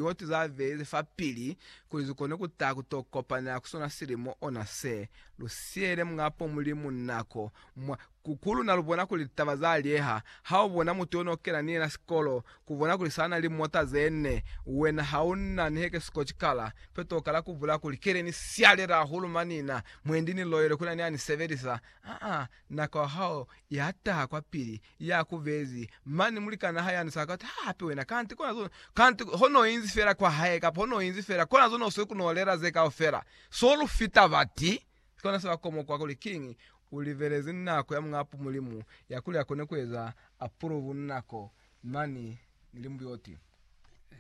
Yo tu za beize fa pili kuli zu kone ku ta ku to kopanela ku sona silimo ona se. Lu siele Muñapo Mulimu nako. Mwa ku, ku luna lu bona kuli litaba za lieha. Ha u bona mutu yo no kena ni yena sikolo, ku bona kuli sa na limota ze ne, wena ha u na ni heke sikoti kala, peto u kala ku bula kuli, Ke le ni sialela hahulu mani na, mwendi ni loyele ku na ni ya ni sebelisa. Aa, nako ya hao ya taha kwa pili, Ya ku bezi, mani mulikan'a hae ani sa ka ti, Hape wena, kanti kona zo, kanti ho no inzi fela kwa hae, kapa ho no inzi fela, kona zo no sweli ku no lela ze kaufela. So lu fita bati. Ki kona se ba komoka kuli, Kiñi? U libelezi nako ya Muñ'a Apu Mulimu, ya kuli a kone ku eza apuluvu nako mani ni limbuyoti.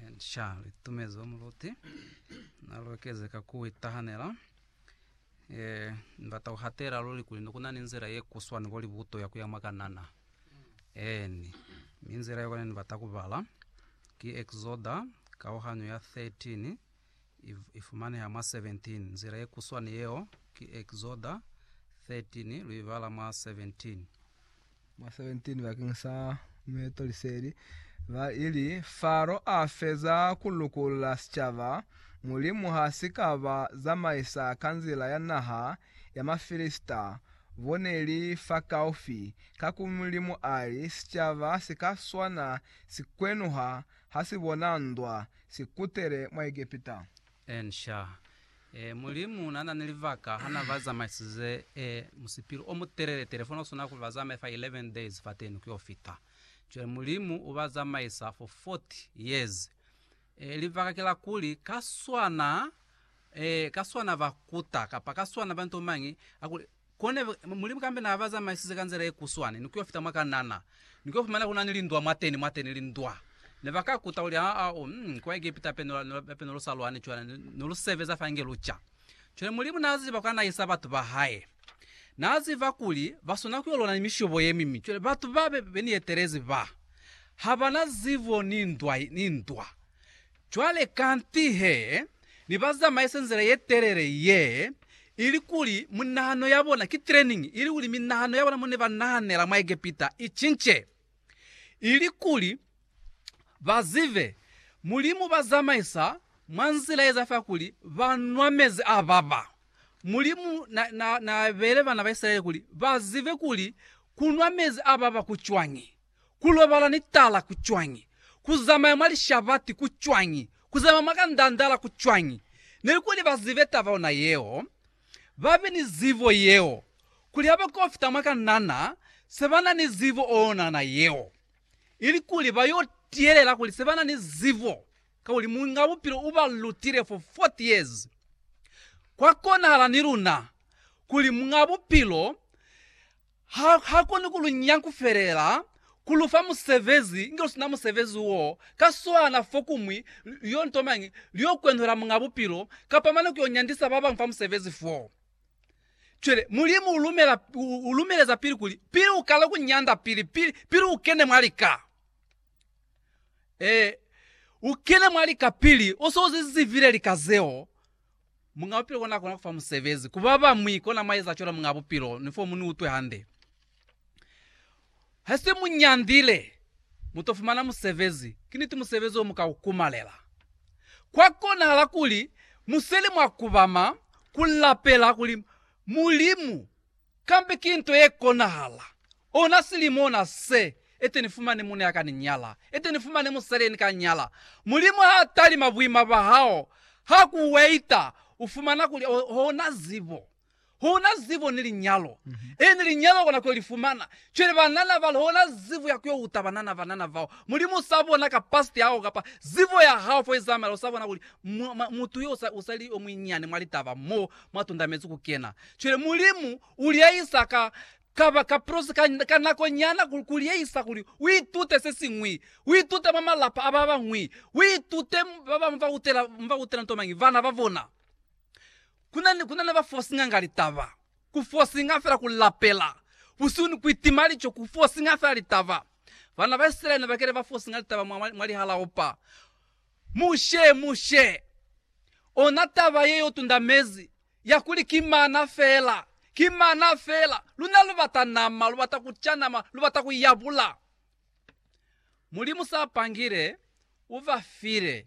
Encia litumezo muluti na lu ekeze ka ku itahanela. Ee, ni bata ku hatela luli kuli ne ku na ni nzila ye kuswa ni kuli buto ya ku ya mwa Kanana. Eeni. Mi nzila yo kani ni bata ku bala, ki Eksoda, kauhanyo ya 13, i, i fumaneha mwa 17. Nzila ye kuswa ni yeo, ki Eksoda 13, lu i bala mwa 17. mwa 17 bakeng sa meeto liseli, ba ili, Faro a feza ku lukulula sicaba, Mulimu ha si ka ba zamaisa ka nzila ya naha ya Mafilisita, bo ne li fakaufi, ka ku Mulimu ali, Sicaba si ka swana sikwenuha ha si bona ndwa, si kutele mwa Egepita. Ensha. E, Mulimu na na ni libaka ha na ba zamaisize, e, musipili o mutelele-telele fo na swana kuli ba zamaye fa 11 days fateni ku yo fita. Cwale Mulimu u ba zamaisa fo 40 years. E, libaka ki la kuli, ka swana, e, ka swana ba kuta, kapa ka swana ba nto mañi, a kuli, Kone, Mulimu kambe na ba zamaisize ka nzila ye kuswani, ni kuyo fita mwa Kanana, ni kuyo fumana kuna ni lindwa mwateni, mwateni lindwa. Ne ba ka kuta kuli, Aa, u, um, kwa Egepita hape, hape ne lu sa lwani cwale, ne, ne lu sebeza fa inge lu ca. Cwale Mulimu na ziba kwa na isa batu ba Hae. Na ziba kuli ba swana kuyo lwana ni mishobo ye mibi. Cwale batu ba be, be ni etelezi ba, ha ba na zibo ni ndwa, ni ndwa. Cwale kanti he ne ba zamaisa nzila ye telele ye, ilikuli minahano ya bona, ki training, ilikuli minahano ya bona mo ne ba nahanela mwa Egepita i cince, ilikuli ba zibe Mulimu uba zamaisa mwa nzila ye za fa kuli ba nwa mezi a baba. Mulimu na, na, na beele bana ba Isilaele kuli ba zibe kuli ku nwa mezi a baba ku cwañi. Ku lobala ni tala ku cwañi? Ku zamaya mwa lishabati ku cwañi? Ku zamaya mwa kandandala ku cwañi? Nelikuli ba zibe taba yona yeo, ba be ni zibo yeo, kuli ha ba kofita mwa kanana, se ba na ni zibo o yonana yeo, ilikuli ba yo tiyelela kuli se ba na ni zibo, kakuli Muñ'a Bupilo u ba lutile for 40 years. Kwa konahala ni luna, kuli Muñ'a Bupilo Ha, ha koni ku lu nya kufelela, ku lu fa musebezi, inge lu sina musebezi wo, ka swana, fokumwi, lyo nto mañi, lyo kwenhwela Muñ'a Bupilo, kapa mane ku yo nyandisa ba bañwi fa musebezi fo. Cwale, Mulimu u lumela, u lumeleza pili kuli, pili u kale ku nyanda, pili, pili, pili u kene mwa lika. Ee, u kene mwa lika pili u se u zi zivile lika zeo. Muñ'a Bupilo kona kona kufa musebezi ku ba bañwi, kona mwa eza cwalo Muñ'a Bupilo, ni fomu ni utwe hande. Hase mu nyandile, mu to fumana musebezi. Ki niti musebezi o mu ka u kumalela. Kwa konahala kuli mu seli mwa kubama ku lapela kuli, Mulimu, Kambe ki nto ye konahala. Ona silimo ona se, ete ni fumane muna ya ka ni nyala, ete ni fumane musali ye ni ka nyala. Mulimu ha talima buima bwa hao, ha ku waita, u fumana kuli hona zibo. Hona zibo ni linyalo. Eeni, linyalo kona ku yo li fumana. Cwale banana bali, hona zibo ya ku yo uta banana, banana bao. Mulimu u sa bona kapasiti ya hao kapa zibo ya hao fo i zamela, u sa bona kuli mu, mu, mutu yo u sa, u sa li yo muinyani mwa litaba mo, mwa tundamezi ku kena. Cwale Mulimu u liyahisa ka, ka ba ka prosi ka, ka nako nyana, ku, ku liyahisa kuli u itute se siñwi. U itute mwa malapa a ba bañwi. U itute ba bañwi ba utela, ba utela nto mañi? Bana ba bona. Ku na ni, ku na ni ba fosinga nga litaba. Ku fosinga fela ku lapela, busihu ni ku itima lico, ku fosinga fela litaba. Bana ba Isilaele ne ba kile ba fosinga litaba mwa, mwa, mwa lihalaopa. Mushe, Mushe, ona taba ye yo tunda mezi, ya kuli ki mana fela, ki mana fela, luna lu bata nama, lu bata ku ca nama, lu bata ku yabula. Mulimu sa pangile, u ba file.